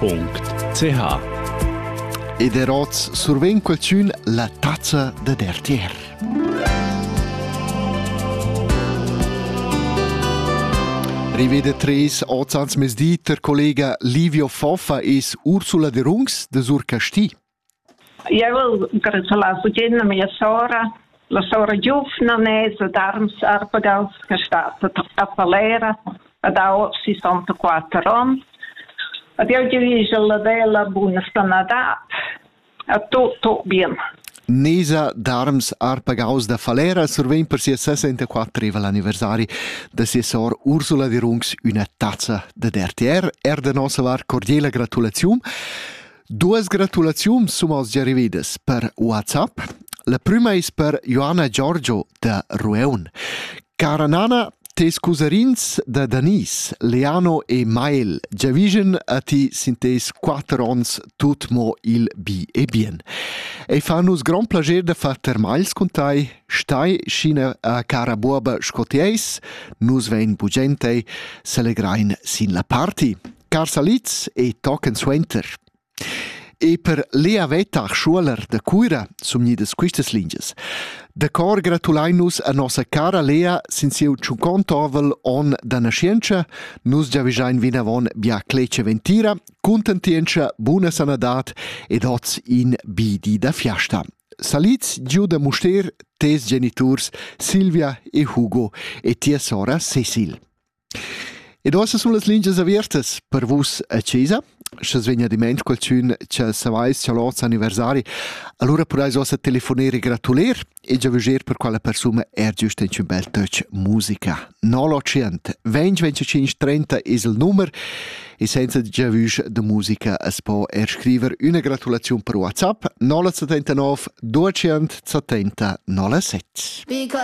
.ch Ed er oz survegn qualsün la tazza da RTR. Rivede tres oz ans mesdi ter collega Livio Foffa es Ursula de Rungs de Sur Casti. Eu al gratulas tut a mia sora. La sora giuvna nes ad Arms Arpagals che stat a Palera ad ho 64 ons. Ad eu diviso la bella buna stanadat a tu tu bien. Nesa d'Arms Arpagaus da Falera survegn per sia 64 anniversari da sia sor Ursula Dirungs üna tazza da DRTR. Er da nossa var cordiela gratulaziun. Duas gratulaziuns sun oz gia rividas per WhatsApp. La prüma es per Joanna Giorgio da Rueun. Cara Nana, tes cusarins da Danis, Leano e Mael, giavischen a ti sin tes quatter ons tut mo il bi e bien. E fa nus grand plager da far termals cun tai, stai scina a cara buoba sco ti eis, nus vein bugentei, selegrain sin la party. Carsaliz e tochen suenter. E per Lea Vetter Schuler de Cuira sun gnidas quistas lingias. Da cor gratulain nus a nossa cara Lea sin sieu tschuncont ovel on da nascientscha. Nus giavischein vinavon bia clece ventira, cuntentientscha, buna sanadad ed oz in bi di da fiasta. Saliz giu da Muster, tes geniturs Silvia e Hugo e tia sora Cecil. Ed uossa sun las lingias avertas per vus a chesa. Sch'as vegna diment qualchün cha savais cha l'hoz anniversari, alura pudais uossa telefoner e gratuler e giavüscher per quella persuna er giüst inchün bel töch musica. 080 20 25 30 es il numer e senza giavüsch da musica as po er scriver üna gratulaziun per WhatsApp 079 270 007. Because